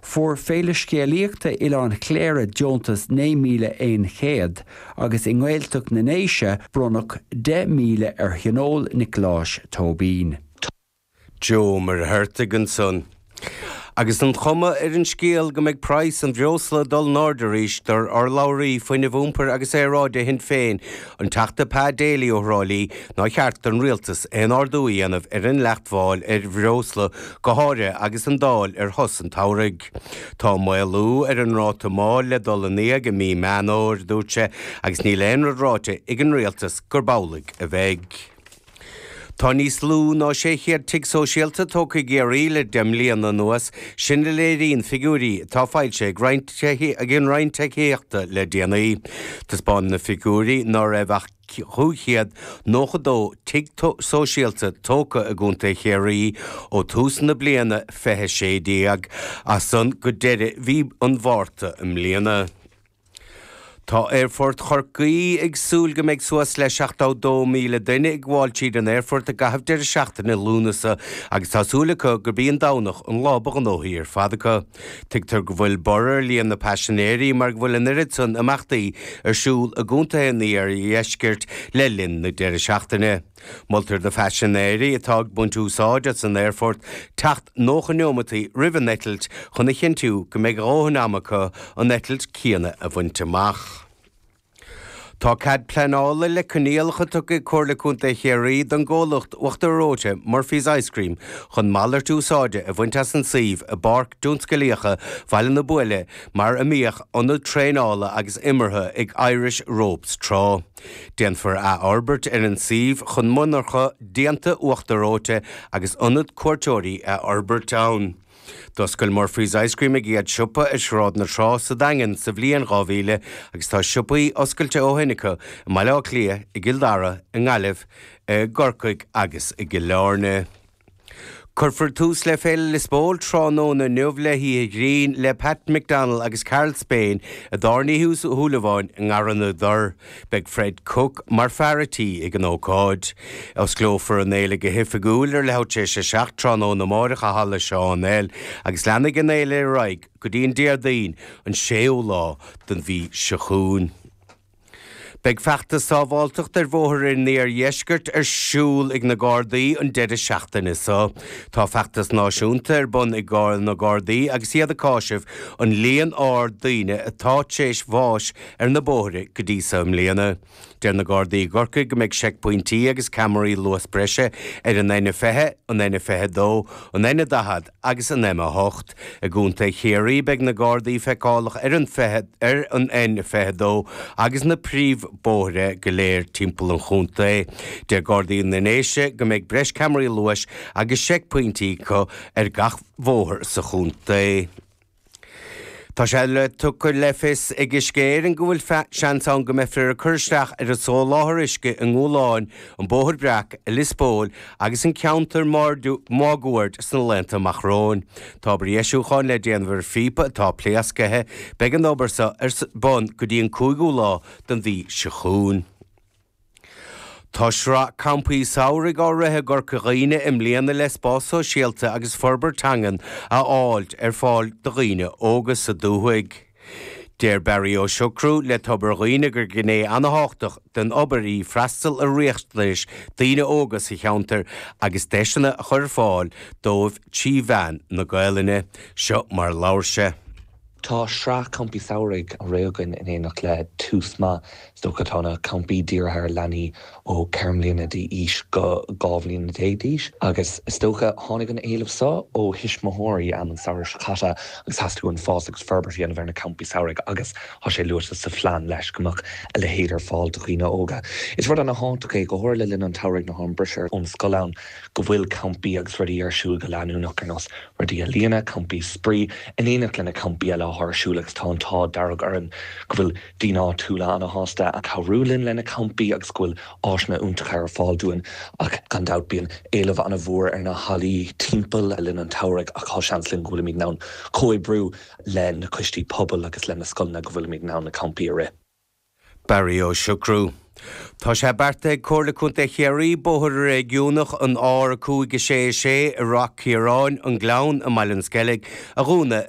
Fuair Féile Scéalaíochta Oileán Chléire deontas €9,100 agus i nGaeltacht na nDéise bronnadh €10,000 ar Thionól Niocláis Tóibín. Joe Ó Muircheartaigh ansan. Agus an chuma ar an scéal go mbeidh praghas an bhreosla ag dul in airde arís, deir urlabhraí Fuinnimh, Iompair agus Aeráide Shinn Féin, An Teachta Pa Daly ó Thrá Lí, nár cheart don Rialtas aon ardú a dhéanamh ar an dleacht mháil ar bhreosla, go háirithe agus an Dáil ar shos an tsamhraidh. Tá maolú ar an ráta máil le dul in éag i mí Meán Fhómhair, dúirt sé, agus níl aon rud ráite ag an Rialtas gurb amhlaidh a bheidh. Tá níos lú ná 600 tigh sóisialta tógtha i gCiarraí le deich mbliana anuas, sin a léiríonn figiúirí atá foilsithe ag an Roinn Tithíochta le déanaí. Taispeánann na figiúirí ná raibh ach 592 tigh sóisialta tógtha i gContae Chiarraí ó tús na bliana, 2016, as san go deireadh mhí an Mhárta i mbliana. Tá Aerfort Chorcaí ag súil go mbeidh suas le 72,000 duine ag gabháil tríd an aerfort i gcaitheamh deireadh seachtaine Lúnasa agus tá súil acu gurb í an Domhnach an lá ba ghnóthaí ar fad acu. Tuigtear go bhfuil borradh ar líon na bpaisinéirí mar go bhfuil an oiread san imeachtaí ar siúl i gcontaetha an iardheiscirt le linn na deireadh seachtaine. Moltar do phaisinéirí atá ag baint úsáid as an aerfort teacht 90 neomataí roimh an eitilt chun a chinntiú go mbeidh a dhóthain ama acu an eitilt céanna a bhaint amach. Tá cead pleanála le coinníollacha tugtha ag Comhairle Contae Chiarraí don gcomhlacht uachtar reoite Murphy's Ice Cream chun malairt úsáide a bhaint as an suíomh i bPáirc Tionsclaíochta Bhaile na Buaile mar a mbíodh ionad traenála agus imeartha ag Irish Ropes tráth. Déanfar athfhorbairt ar an suíomh chun monarcha déanta uachtar reoite agus ionad cuairteoirí a fhorbairt ann. D'oscail Murphy's Ice Cream a gcéad siopa ar Shráid na Trá sa Daingean sa bhliain 2000 agus tá siopaí oscailte ó shin acu i mBaile Átha Cliath, i gCill Dara, i nGaillimh, i gCorcaigh agus i gCill Airne. Cuirfear tús le Féile Lios Póil tráthnóna inniu le hoíche ghrinn le Pat McDonnell agus Karl Spain i dtábhairne Uí Shúilleabháin i nGarraí na dTor. Beidh Fred Cooke mar fear an tí ag an ócáid. Osclófar an fhéile go hoifigiúil ar leathuair tar éis a 7 tráthnóna amárach i Halla John L. agus leanfaidh an fhéile ar aghaidh go dtí an Déardaoin, an 6ú lá den mhí seo chugainn. Beidh feachtas sábháilteachta ar bhóithre an iardheiscirt ar siúl ag na Gardaí an deireadh seachtaine seo. Tá feachtas náisiúnta ar bun ag na Gardaí agus iad ag cáiseamh an líon ard daoine atá tar éis bháis ar na bóithre go dtí seo i mbliana. Deir na Gardaí i gCorcaigh go mbeidh seicphointí agus ceamaraí luas breise ar an N20, an N22, an N40, agus an M a hocht. I gContae Chiarraí beidh na Gardaí feiceálach ar an ar an N22 agus na príomhbóithre go léir timpeall an chontae. Deir Gardaí na nDéise go mbeidh breis ceamaraí luais agus seicphointí acu ar gach bóthar sa chontae. Tá sé tugtha le fios ag Uisce Éireann go bhfuil seans ann go mbeifear ag cur isteach ar an soláthar uisce i nGualáin, An Bóthar Breac i Lios Póil agus an ceantar máguaird sna laethanta amach romhainn. Tá obair dheisiúcháin le déanamh ar phíopa atá pléasctha. Beidh an obair so ar bun go dtí an 5ú lá den mhí seo chugainn. Tá sraith campaí samhraidh á rith i gCorca Dhuibhne i mbliana le spás sóisialta agus forbairt teangan a fháilt ar fáil do dhaoine óga sa dúthaigh. Deir Barry Ó Siochrú le Tobar Dhuibhne gur gné an-tábhachtach den obair í freastal ar riachtanais daoine óga sa cheantar agus deiseanna a chur ar fáil dóibh trí mheán na Gaelainne. Seo mar a labhair sé. Tá sraith campaí samhraidh á rith againn in éineacht le Tús Maith. Is dócha go bhfuil na campaí dírithe ar leanaí ó 4 mbliana d'aois go 12 bhliana d'aois agus is dócha tháinig an éileamh so ó thuismitheoirí am an samhradh seo caite agus theastaigh uainn fás agus forbairt a dhéanamh ar na campaí samhraidh agus tá sé luaite sa phlean leis go mbeadh a leithéid ar fáil do dhaoine óga. Is rud ana thábhachtach é, go háirithe le linn an tsamhraidh nuair atá an briseadh ón scoil ann, go bhfuil campaí agus rudaí ar siúl go leanúnach ar nós, Rudaí ealaíne, campaí spraoi in éineacht leis na campaí eile atá ar siúl agus tá an t-ádh dearg orainn go bhfuil daoine áitiúla ana shásta ag cabhrú linn leis na campaí agus go bhfuil áiseanna iontacha ar fáil dúinn ach gan dabht bíonn éileamh ana mhór ar na hallaí timpeall le linn an tsamhraidh ach tá seans linn go bhfuilimid in ann comhoibriú leis na coistí pobail agus leis na scoileanna go bhfuilimid in ann na campaí a rith. Barry Ó Siochrú. Tá sé beartaithe ag Comhairle Contae Chiarraí bóthar réigiúnach an R5 6 6 i Ráth Ciaráin, An Gleann i mBaile an Sceilg a dhúnadh ar.